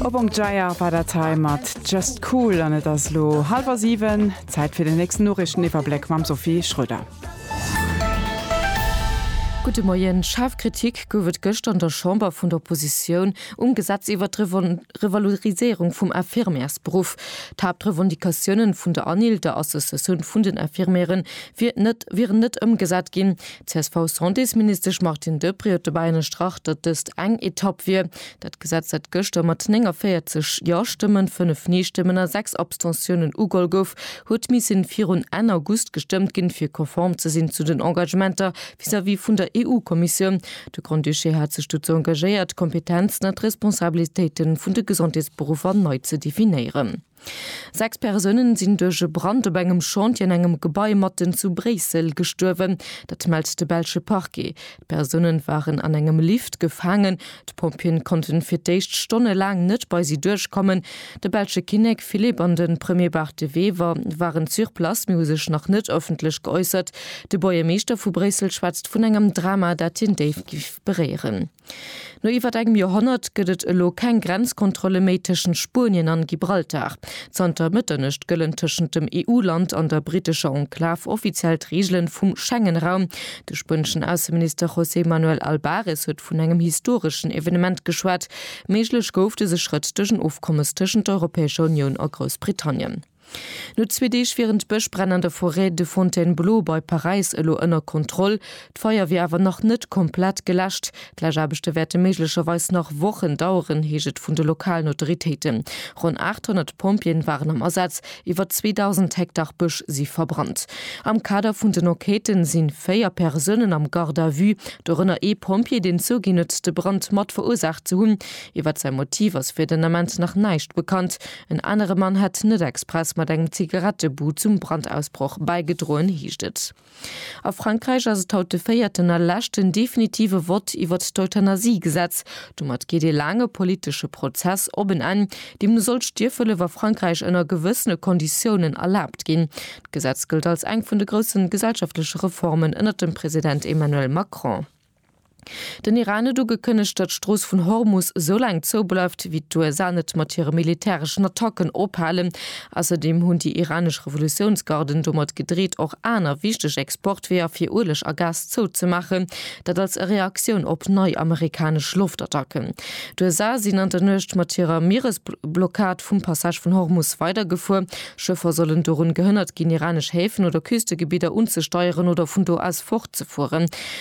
Op Ong Dreier war dat hei mat just cool an et ass lo halwer 7, Zäit fir den nächsten Noriichteniwwerbléck mam Sophie Schröder. Gudde Moien. Schaarf Kritik gouf et gëschter an der Chamber vun der Oppositioun um Gesetz iwwert d'Revaloriséierung vum Infirmiersberuff. D'Haaptrevendicatiounen vun der ANIL, der Associatioun vun den Infirmieren, wier net, wieren net ëmgesat ginn. D'CSV-Santésministesch Martine Deprez huet dobäi ënnerstrach, datt dëst eng Etapp wier, Dat Gesetz, dat gëschter mat 49 Ja-Stëmmen, 5 Nee-Stëmmen a 6 Abstentiounen ugeholl gouf, huet missen virun Enn August gestëmmt ginn, fir konform ze sinn zu den Engagementer vis-à-vis vun der EU-Kommissioun. De Grand-Duché hat sech dozou engagéiert, d'Kompetenzen a d'Responsabilitéiten vun de Gesondheetsberuffer nei ze definéieren. Sechs Persounen sinn duerch e Brand op engem Chantier an engem Gebai matten zu Bréissel gestuerwen. Dat mellt de belsche Parquet. D'Persounen waren an engem Lift gefaangen. D'Pompjeeën konnten fir d'éischt stonnelaang net bei si duerchkommen. De belsche Kinnek Philippe an de Premier Bart De Wever waren sur place, mee hu sech nach net ëffentlech geäussert. De Buergermeeschter vu Bréissel schwätzt vun engem Drama, dat hien déif géif beréieren. No iwwert engem Joerhonnert gëtt et elo keng Grenzkontrolle méi tëschent Spuenien an Gibraltar. Zanter Mëtternuecht gëllen tëschent dem EU-Land an der brittescher Enklav offiziell d'Reegelen vum Schengen-Raum. De spueneschen Ausseminister José Manuel Albares huet vun engem historeschen Evenement geschwat. Méiglech gouf dëse Schrëtt duerch en Ofkommes tëschent der Europäescher Unioun a Groussbritannien. No zwee Deeg wieren d'Bëschbränn an der Forêt de Fontainebleau bei Paräis elo ënner Kontroll. D'Feier wier awer nach net komplett geläscht. D'Läschaarbechte wäerte méiglecherweis nach Wochen daueren, heescht et vun de lokalen Autoritéiten. Ronn 800 Pompjeeën waren am Asaz, iwwer 2.000 Hektar Bësch si verbrannt. Am Kader vun den Enquêtë si véier Persounen am Garde à vue, dorënner ee Pompjee, deen zouginn huet, de Brand mat verursaacht ze hunn. Iwwer säi Motiv ass fir den Ament nach näischt bekannt. En anere Mann hätt net express mat engem Zigarettebud zum Brandausbroch bäigedroen, heescht et. A Frankräich ass et haut de véierten a leschten definitive Vott iwwert d'Euthanasie-Gesetz. Domat geet ee laange politesche Prozess op en Enn. Deemno soll d'Stierfhëllef a Frankräich ënner gewëssene Konditiounen erlaabt ginn. D'Gesetz gëllt als eng vun de groussen gesellschaftleche Reformen ënnert dem President Emmanuel Macron. Den Iran huet ugekënnegt, datt d'Strooss vun Hormus esou laang zoubleift, wéi d'USA net mat hire militäreschen Attacken ophalen. Ausserdeem hunn déi iranesch Revolutiounsgarden domat gedreet, och aner wichteg Exportweeër fir Ueleg a Gas zouzemaachen, dat als Reaktioun op nei amerikanesch Loftattacken. D'USA sinn an der Nuecht mat hirer Mieresblockad vum Passage vun Hormus weidergefuer. Schëffer sollen dorun gehënnert ginn, iranesch Häfen oder Küstegebidder unzesteieren oder vun do aus fortzefueren.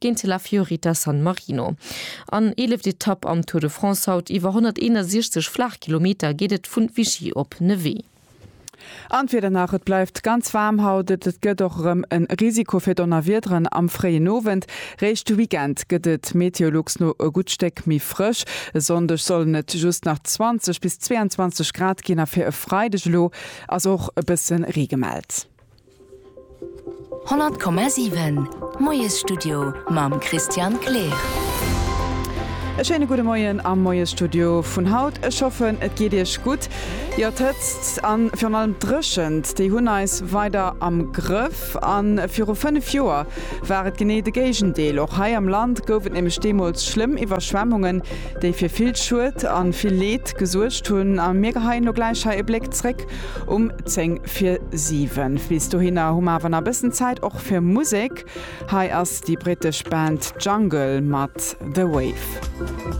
géint de La Fiorita San Marino. An eeleft Etapp am Tour de France, haut iwwer 161 Flaachkilometer, geet et vun Vichy op Nevers. An d'Wieder nach, Et bleift ganz waarm haut, et et gëtt och erëm e Risiko fir Donnerwiederen am fréien Owend. Réischt de Weekend gëtt et Meteolux no e gutt Stéck méi frësch. E Sonndeg sollen et just nach 20 bis 22 Grad ginn a fir e Freideg elo ass och e bësse Ree gemellt. 100,7 Moiesstudio mam Christian Kleer. E schéine gudde Moien am Moiesstudio vun haut. Ech hoffen et geet Iech gutt. Jo, d'Hëtzt an virun allem d'Dréchent, déi hunn eis weider am Grëff. An viru 5 Joer war et genee de Géigendeel. Och hei am Land gouf et nämlech deemools schlëmm Iwwerschwemmungen, déi fir vill Schued an vill Leed gesuergt hunn. A mir geheien elo gläich hei e Bléck zréck. Um 10 fir 7. Bis dohinner hu mer awer nach e bëssen Zäit och fir Musek. Hei ass déi brittesch Band Jungle mat The Wave.